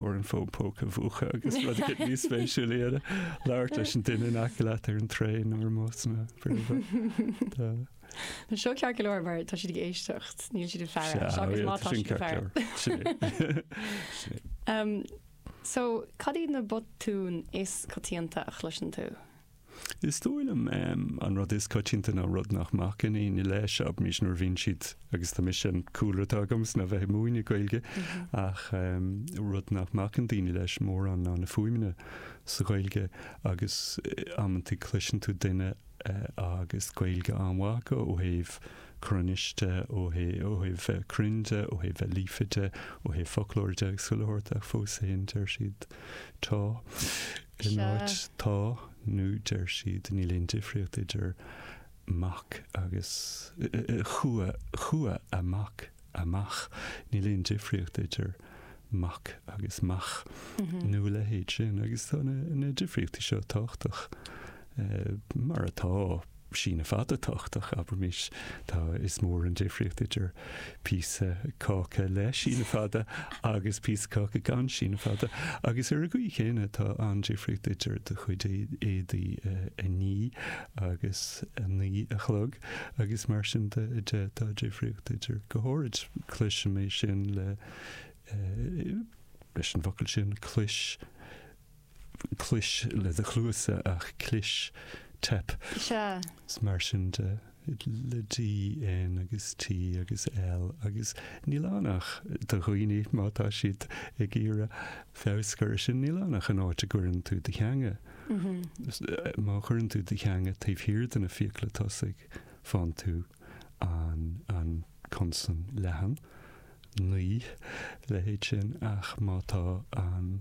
ar an bhfón póca mhúchadh agus rud éigin níos spéisiúil a dhéanamh, labhairt leis an duine in aice leat ar an traein nó ar an mbus nó whatever. Tá. Tá seo ceart go leor mar tá siad ag éisteacht, níl siad ag faire. Sea, seachas má tá siad ag faire. Tá sin ceart go leor. Sin é. Sin é. Um, so, cad iad na botúin is coitianta a chloiseann tú? Is dóigh liom an rud is coitianta ná rud nach mbacann aoinne leis ach mise nuair a bhíonn siad agus tá mise an cúlra atá agamsa ná bheith ag múineadh Gaeilge ach rud nach mbacann daoine leis mórán ná na fuaimeanna sa Ghaeilge agus amantaí cloiseann tú duine agus Gaeilge an-mhaith acu ó thaobh cruinnis de, ó thaobh bheith cruinn de, ó thaobh bheith líofa de, ó thaobh foclóra de agus chuile shórt ach fós féin deir siad Tá. In áit tá nó deir siad, níl aon difríocht idir mac agus chuaigh, chuaigh a mac amach, níl aon difríocht idir mac agus mach, nó a leithéid sin, agus tá na difríochtaí seo tábhachtach. mar atá, síneadh fada tábhachtach, abraimis, tá's agat, is mór an difríocht idir píosa cáca le síneadh fada agus píosa cáca gan síneadh fada, agus ar an gcaoi chéanna tá an-difríocht idir do chuid éadaí a ní agus a naoi a chlog, agus mar sin de, tá difríocht idir go háirid. Cloisim é sin le, leis an bhfocal sin, clois. clois le do chluasa ach clis, teip. Sea. Agus mar sin de le D, N agus T agus L agus níl ann ach do dhaoine má tá siad ag iarraidh feabhas a chur ar sin, níl ann ach an áit a gcuireann tú do theanga. Má chuireann tú do theanga taobh thiar de na fiacla tosaigh, faigheann tú an consan leathan, naoi, leithéid sin ach má tá an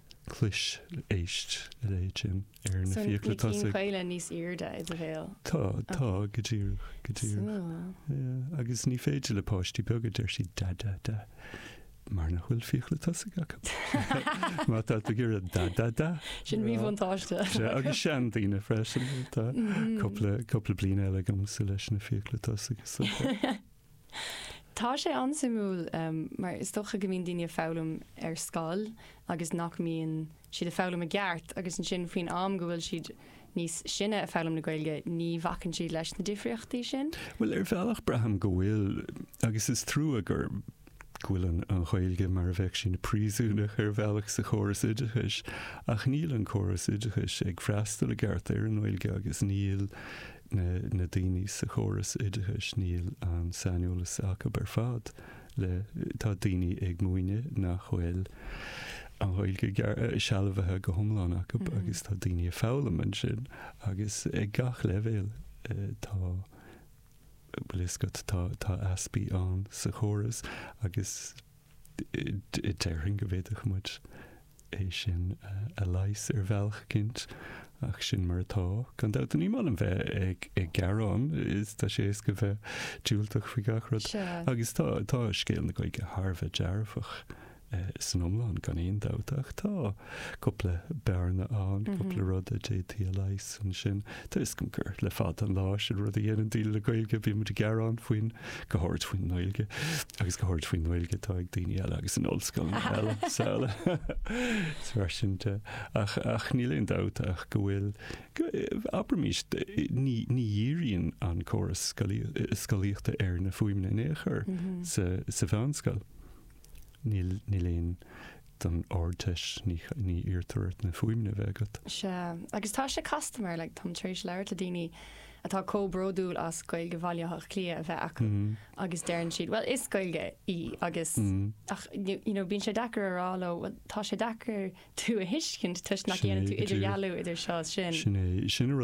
clois, éist, a leithéid sin ar na fiacla tosaigh. Tá na cinn chaola níos airde i do bhéal. Tá, tá, go díreach, go díreach. Agus ní féidir le páistí beaga, deir siad da da da, mar nach bhfuil fiacla tosaigh acu. Má tá tú ag iarraidh da da da. Sin míbhuntáiste. Agus seandaoine freisin, tá cúpla, cúpla bliain eile agamsa leis na fiacla tosaigh. Tá sé an-suimiúil mar is dócha go mbíonn daoine ag foghlaim ar scoil agus nach mbíonn siad ag foghlaim i gceart agus ansin faoin am go bhfuil siad níos sine ag foghlaim na Gaeilge ní bhacann siad leis na difríochtaí sin. Bhuel ar bhealach braithim go bhfuil agus is trua gur go bhfuil an Ghaeilge mar a bheadh sí ina príosúnach ar bhealach sa chóras oideachais ach níl an córas oideachais ag freastal i gceart ar an nGaeilge agus níl na daoine sa chóras oideachais, níl an saineolas acu ar fad le. Tá daoine ag múineadh nach bhfuil an Ghaeilge sealbhaithe go hiomlán acu agus tá daoine ag foghlaim ansin agus ag gach leibhéal tá, an bhfuil a fhios agat, tá easpaí ann sa chóras agus Déarfainn go bhféadfadh muid é sin a leigheas ar bhealach eicínt, ach sin mar atá. Gan dabht, ní maith liom bheith ag gearán, is tá sé éasca bheith diúltach faoi gach rud. Agus tá, tá scéal na Gaeilge thar a bheith dearfach san iomlán, gan aon dabht, ach tá cúpla bearna ann, cúpla rud a d'fhéadfaí a leigheas ansin. Tá, is cinnte gur le fada an lá sin an rud a dhéanann daoine le Gaeilge, bíonn muid ag gearán faoin, go háirid faoin nGaeilge, agus go háirid faoin nGaeilge atá ag daoine eile agus in ollscoileanna eile sa eile. Is mar sin de. Ach, ach níl aon dabht ach go bhfuil, abraimís, ní, ní dhíríonn an córas scolaíochta ar na fuaimeanna in aon chor sa, sa mheánscoil. Níl, níl aon, don Ardteist ní iarrtar ort na fuaimeanna a bheith agat. Sea, agus tá sé casta mar, like, táim tar éis labhairt le daoine atá chomh bródúil as Gaeilge Bhaile Átha Cliath a bheith acu agus deireann siad, bhuel, is Gaeilge í agus, ach, you know, bíonn sé deacair a rá leo, bhuel, tá sé deacair tú a thuiscint toisc nach ndéanann tú idirdhealú idir seo is sin. Sin é, sin an rud.